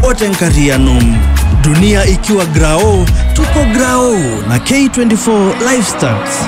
ote nkarianom dunia ikiwa grao tuko grao na k24 lifestyles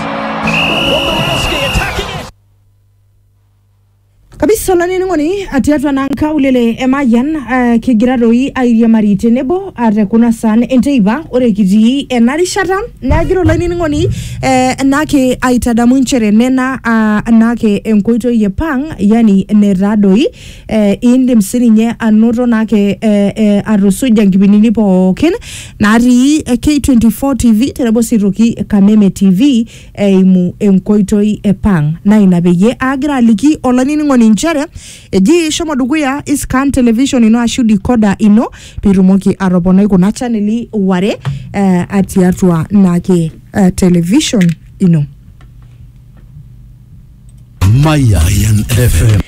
kabisa olanining'oni tiatua naa nkaulele e mayian eh, kigira doi airiamari tenebo ah, te kuna saan enteipa ore kitii ena rishata neagira olanining'oni eh, naake aitadamu inchere nena ah, naake enkoitoi e pang yani netaa doi eh, indim sininye anoto naake eh, eh, atusuja nkipindini pookin natii eh, K24 TV tenebo sii toki Kameme TV eimu enkoitoi e pang na ina peyie agira aliki olainining'oni inchere eji shomo dukuya iscan television ino ashu decoder ino pitumoki atoponai kuna chaneli ware eh, atiatua naake eh, television ino Mayan FM.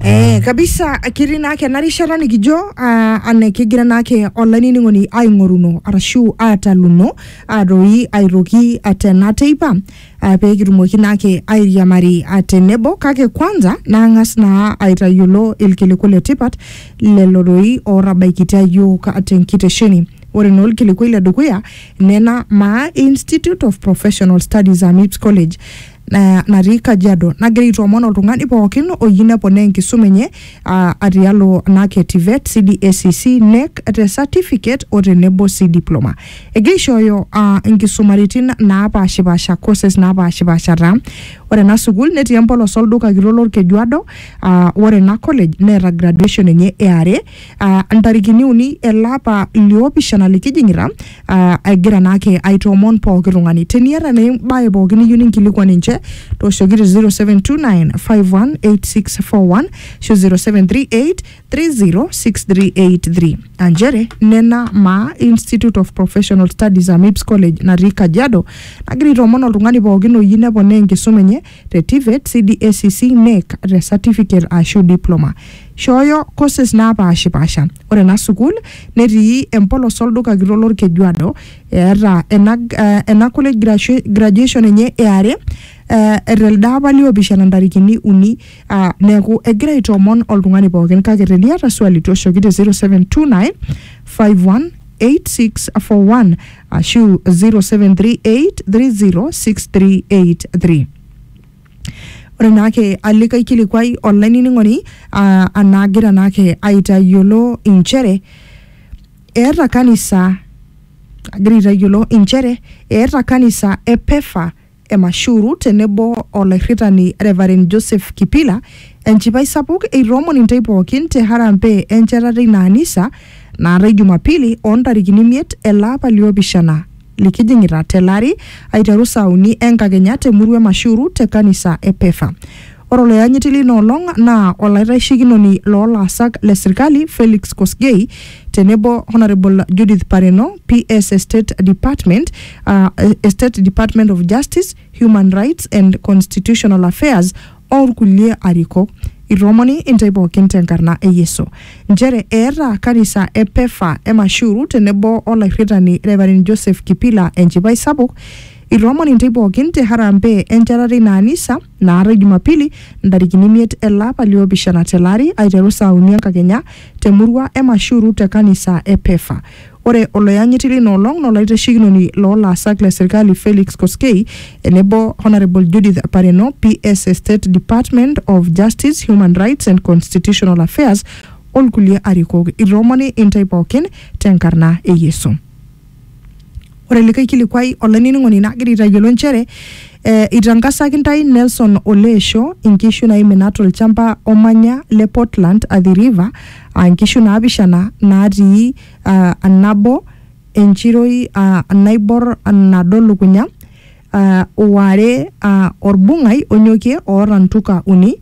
Eh, kabisa kiri naake ena rishata nikijo ah, ane kigira naake olainining'oni aing'oruno arashu aataluno aatoi aitoki atena teipa ah, pee kitumoki naake airiamari ah, tenebo kake kwanza naang'as naa aitayiolo ilkiliku le tipat lelo doi ootabaikitia iyiook ah, tenkitesheni ore naa olkilikuai le dukuya nena maa institute of professional studies amips college na- natii Kajiado nagira aitoomon oltung'ani pookin oyieu neponaa enkisuma enye ah, atialo NAC e TVET, CDACC, NEC te certificate o tenebo sii diploma. Egira aishooyo ah, inkisumaritin naapashipasha courses naapashipasha taa. Ore ena sukuul netii empolos olduka kitok lolkejuado ah, ore ena college neeta graduation enye e are ah, ntarikini uni ele apa liopishana likijing'ita ah, egira naake aitoomon pooki tung'ani teniata naa embae pooki niyieu ninkilikuan ninche tooshoki te 0729518641 ashu 0738306383 aa nchere nena maa institute of professional studies amips college natii kajiado nagira aitoomon oltung'ani pookin oyieu neponaa enkisuma enye te TVET, CDA, CC, NEC te certificate aashu diploma. Shooyo courses naapaashipaasha. Ore ena sukuul netii empolos olduka kitok lolkejuado. Eeta ena eh, ena college grashu- graduation enye e are eh, telde apa liopishana ntarikini uni ah, neeku egira aitoomon oltung'ani pookin kake teniata swali toshoki te 0729 518641 ashu 0738306383 ore naake alikae kilikuai olainining'oni ah, anaagira naake aitayiolo inchere eeta kanisa agira aitayiolo inchere eeta kanisa e pefa Emashuru tenebo olairritani Revarend Joseph Kipila enchipai sapuk eitoomon intay pookin te harambee enchetata eina anisa naatai Jumapili oo ntarikini imiet ele apa li opishana likijing'ita tele ari aiteru saa uni enkakenya te murua e Mashuru te kanisa e Pefa. Ore oloyanyiti leina olong naa olaitaisekinoni loo laasak le serkali Felix Kosgei tenebo Honourable Judith Pareno, PS e State Department aa State Department of Justice, Human Rights and Constitutional Affairs o lkulie arikok. Itoomoni intae pooki te nkarna e Yesu. Nchere eeta kanisa e Pefa e Mashuru tenebo o lairritani Rev. Joseph Kipila enchipai sapuk. Itoomoni intae pooki te harambee enchatata eina anisa. naatae Jumapili ntarikini imiet ele apa liopishana tele ari aiteru saa uni enkakenya te murua e Mashuru te kanisa e Pefa. Ore oloyanyiti leina olong naa olaitashekinoni loo laasak le serkali Felix Koskei enebo Honourable Judith Pareno, PS e State Department of Justice, Human Rights and Constitutional Affairs o lkulie arikok. Itoomoni intae pookin te nkarna e Yesu. Ore likae kilikuai olainining'oni nagira aitayiolo nchere eh, itangasaki ntae Nelson Oleesho inkishu naimina tolchamba omanya le Portland Athi River aa nkishu naapishana naatii ah, nabo enchiroi ah, naibor nado lukunya ah, o are ah, orbung'ai onyokie oota ntuka uni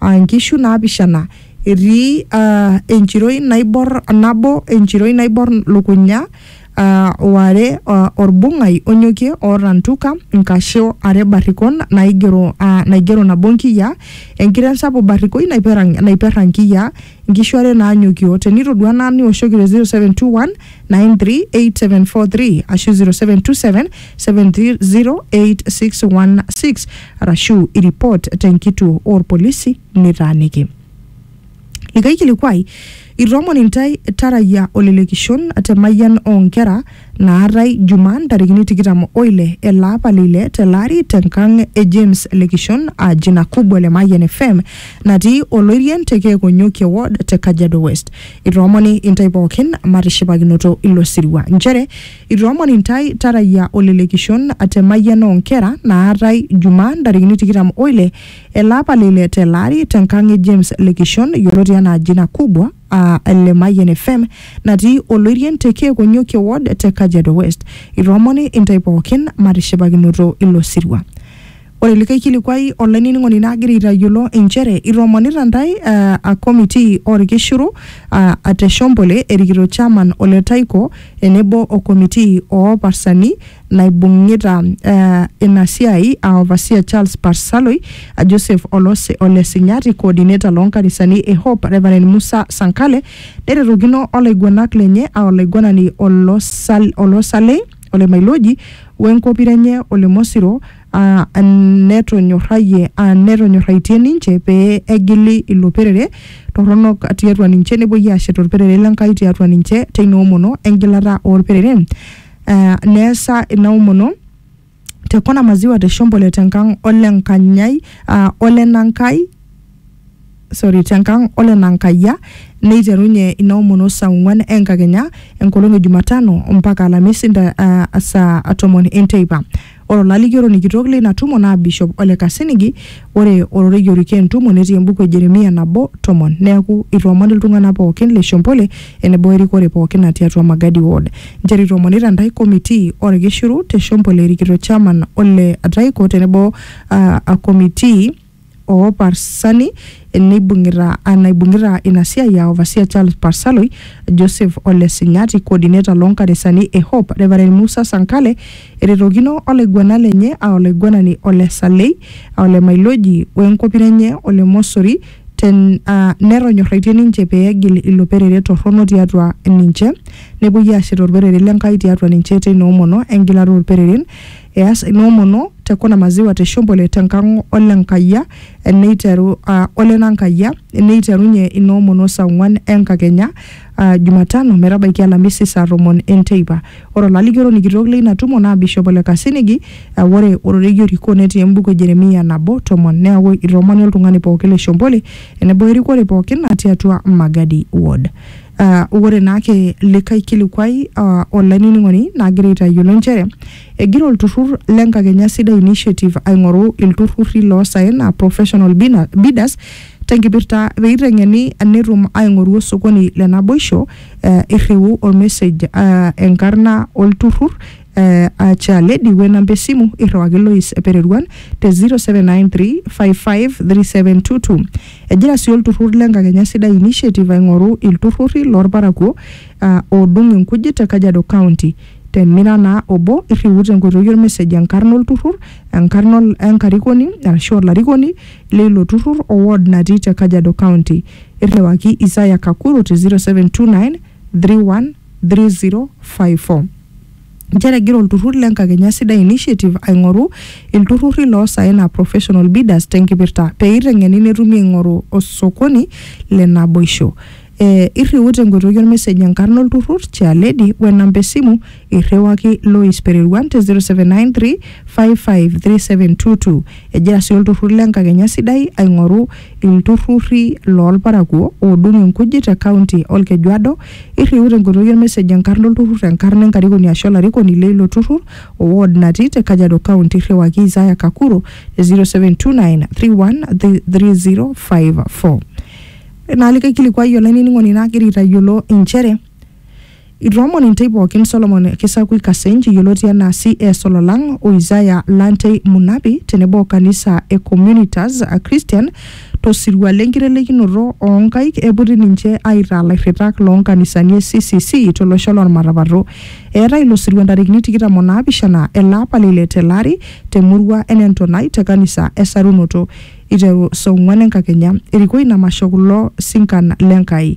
aa nkishu naapishana, etii enchiroi naibor nabo, enchiroi naibor lukunya, o are olbung'ai onyokie oota ntuka, nkasho are barrikon naigero nabo nkiyia, enkiteng sapuk barrikoi naiperra nkiyia, nkishu are naanyokio. Tenitodua naa niwoshoki te 0721. 93873 ashu 0727 70816 arashu iripot tenkituo oorpolisi nitaaniki. Likae kilikuai, itoomon intae tarayia olelekishon te mayian oo nkera naatae Jumaa ntarikini tikitam oile ele apa le ile tele ari tenkang e James Lekishon aa jina kubwa le Mayian FM natii Oloirien te Keekonyokie ward te Kajiado West. itoomoni intae pookin matishipakinoto ilo sirua nchere itoomoni intae tarayia olelekishon te mayian oo nkera naatae jumaa ntarikini tikitam oile ele apa le ile tele ari tenkang e James Lekishon yioloti anaa jina kubwa aa le Mayian FM natii Oloirien te Kiekonyokie ward te Kajiado West. Itoomoni intae pookin matishipakinoto ilo sirua. Ore likae kilikuai olainining'oni naagira aitayiolo inchere itoomonita ntae uh, a committee orkishiru uh, a te Shombole erikito chairman ole Taiko tenebo o committee oo parsani naibung'ita uh, ina siai a overseer Charles Parsaloi, a Joseph Olose ole Sinyati, coordinator loo nkanisani e Hope Reverend Musa Sankale, neretokino olaiguanak lenye a olaiguanani Olosal, Olosalei. ole Mailoji we nkopira enye ole Mosiro aa netonyorrayie aa netonyorraitie ninche pee egili ilo perere torronok tiatua ninche nepuoi aashet olperere le Nkai tiatua ninche teina omono engilata olpereren aa neesa ina omono te Kona Maziwa te Shombole te nkang ole Nkanyai aa ole Nankai sorry, te nkang ole Nankaiyia neiterunye ina omono saa ong'uan enkakenya enkolong e Jumatano mpaka Alamisi nta, uh, saa tomon enteipa. Ore olalikioroni kitok leina tumo naa Bishop Ole Kasinigi. Ore ororei orikie entumo netii embuku e Jeremia nabo tomon. Neaku itoomon iltung'ana pookin le Shompole enebo erikore pookin natii atua Magadi ward. Nchere itoomonita ntae komitii olkishiru te Shompole erikito Chairman Ole Ataiko tenebo uh, komitii oo Parsali neibung'ita ah, naibung'ita ina siai aa Overseer Charles Parsaloi, Joseph Ole Sinyati, Coordinator loo nkanisani e Hope, Reverend Musa Sankale, eretokino olaiguanak lenye aa olaiguanani Ole Salei, aa Ole Mailoji o enkopiro enye Ole Mosori ten, ah, netonyorraitie ninche pee egil ilo perere torrono tiatua ninche nepuoi aashet olperere le Nkai tiatua ninche teina omono engilata oo lpereren Eas inoomono te kuna maziwa te Shombole te nkang ole Nkaiyia neiteru uh, ole Nankaiyia neiterunye inoomono saa ong'uan enkakenya uh, Jumatano metabaiki Alamisi saa tomon enteipa. Ore olalikioroni kitok leina tumo naa Bishop Ole Kasinigi. Uh, ore ororei orikoo netii embuku e Jeremia nabo tomon. Neaku itoomoni oltung'ani pooki le Shombole enebo erikore pooki natii atua Magadi ward. Uh, ore naake likae kilikuai uh, olainining'oni nagira aitayiolo nchere egira olturrur le Nkakenya Sidai Initiative aing'oru ilturrurri loosaen uh, professional bina- bidders tenkipirta peiteng'eni netum aing'oru osokoni le naboisho uh, irriu ormesej uh, enkarna olturrur Eh, acha lady we namba esimu irriwaki lois epereruan te 0793553722 egira sii olturrur le nkakenya sidai initiative aing'oru ilturrurri loorparakuo ah, oodung inkujit te kajiado county tenira naa obo irriu tenkoitoi ormesej enkarna olturrur enkarna ol- enkarikoni arashu olarikoni leilo turrur o ward natii te kajiado county irriwaki isaya kakuru te 0729 31 3054 nchere egira olturrur le Nkakenya Sidai Initiative aing'oru ilturrurri loosaen aa professional bidders tenkipirta pee eiteng'eni netumi aing'oru osokoni le naboisho. Eh, irriu tenkoitoi olmesej enkarna olturrur, chairlady, we namba esimu irriwaki Lois Pereruan te 0793 553722. Egira sii olturrur le Nkakenya Sidai aing'oru ilturrurri loolparakuo oodung inkujit te kaunti Olkejuado Irriu tenkoitoi olmesej enkarna olturrur, enkarna enkarikoni aashu olarikoni leilo turrur o ward natii te Kajiado County. Irriwaki Isaya Kakuro te 0729313054. Ore naa likae kilikuai olainining'oni naagira aitayiolo inchere itoomon intei pookin Solomon Kisakui Kasenj yioloti anaa CS Ololang o Isaya Lantei Munabi tenebo o kanisa e Communitas Christian To sirua le nkitelekinoto oo nkaik eiputi ninche aitaa lairritak loo nkanisani e CCC to losho loo Lmatapato. Eetae ilo sirua ntarikini tikitam o naapishana ele apa le ile tele ari te murua e Nentonai te kanisa e Sarunoto eiteru saa ong'uan e nkakenya. Erikoo ina masho kulo sinkan le Nkai.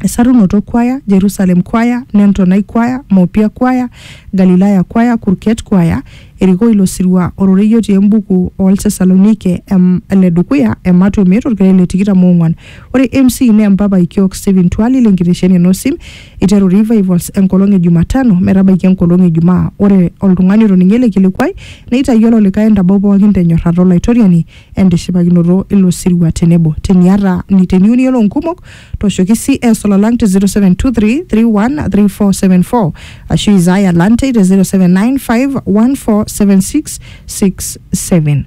Esarunoto Kwaya, Jerusalem Kwaya, Nentonai Kwaya, Mopia Kwaya, Galilaya Kwaya, Kurket Kwaya, erikoo ilo sirua ororei otii embuku oo Ltesalonike em- le dukuya ematua emiet olkereri le tikitam oong'uan. Ore MC naa empapai kiok Stephen Twali le nkitesheni e Nosim, eiteru Revivals enkolong e Jumatano metabaiki enkolong e Jumaa. Ore oltung'ani otoning'o ele kilikuai neitayiolo likae entabau pooki te nyorrata o Laitoriani. entishipakinoto ilo sirua tenebo teniata ni- teniyieu niyiolou nkumok tooshoki cs olalang te 0723313474 ashu isaya lante te 0795147667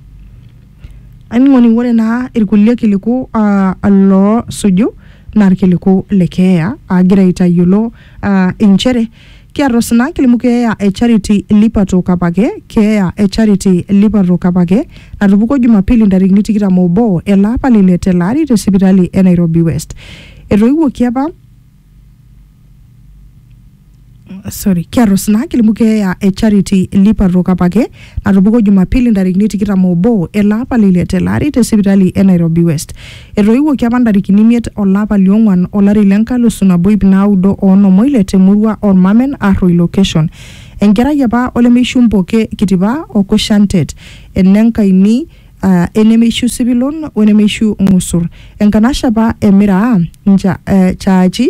aning'oni ore naa irkulie kiliku ah, loosuju naa irkiliku le keeya agira aitayiolo ah, inchere Kiarros ina kilimu keeya e Charity Lipato Kapake, Keeya e Charity Lipato Kapake natupukuo Jumapili ntarikini tikitam obo ele apa le ile tele ari te sipitali e Nairobi West. Etoiwuoki apa sorry, kiarros ina kilimu keeya e Charity Lipato Kapake, natupukuo Jumapili ntarikini tikitam obo ele apa le ile tele ari te sipitali e Nairobi West. Etoiwuoki apa ntarikini imiet olapa liong'uan olari le nkalusu nabo ip naudo o onom oile te murua Ormamen Arroi Location. Enkerai apa olemeishu Mpoke Kitipa o Kushantet, ene Nkaini, uh, enemeishu Sipilon wenemeishu Ng'usur. Enkanashe apa e Miraa Ncha, uh, Chaachi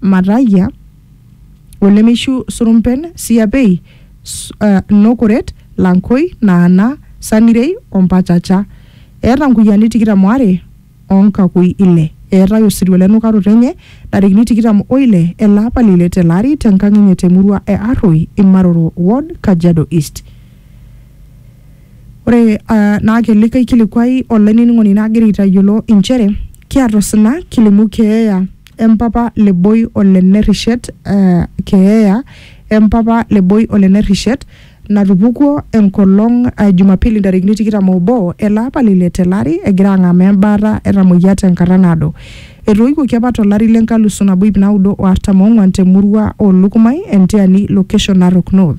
Matayia, o lemeishu Surumpen, Siapei, Nokoret, Lankoi, Naana, Sanirei o Mpachacha. Eeta nkuyiani tikitam o are o nkakui ile. Eetae osirua le nukaroto enye ntarikini tikitam o ile ele apa le ile tele ari te nkang enye te murua e Arroi, Imaroro ward, Kajiado East. Ore naa ake likae kilikuai olainining'oni nagira aitayiolo inchere kiata osina kilimu keeya empapa le Boi o le Nerrishet keeya empapa le Boi o le Nerrishet natupukuo enkolong e Jumapili ntarikini tikitam oobo ele apa le ile tele ari egira ang'amaa embaata etamoyia tenkata naado. Etooiwuoki apa to lari le nkalusu nabo iip naudo o artam oong'uan te murua oo Lukumai, Entiani location, Narok North.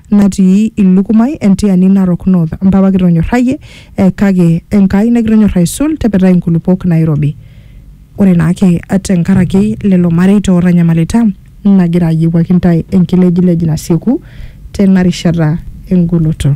natii Ilukumai, entiani Narok North. Mpapa kitonyorrayie eh, kake Enkai nakitonyorr aisul, tepetai nkulupuok nairobi. Ore naake te nkaraki lelo mareita ootanyamalita, nagira ayiewuaki ntae enkilejilej nasieku tena rishata engoloto.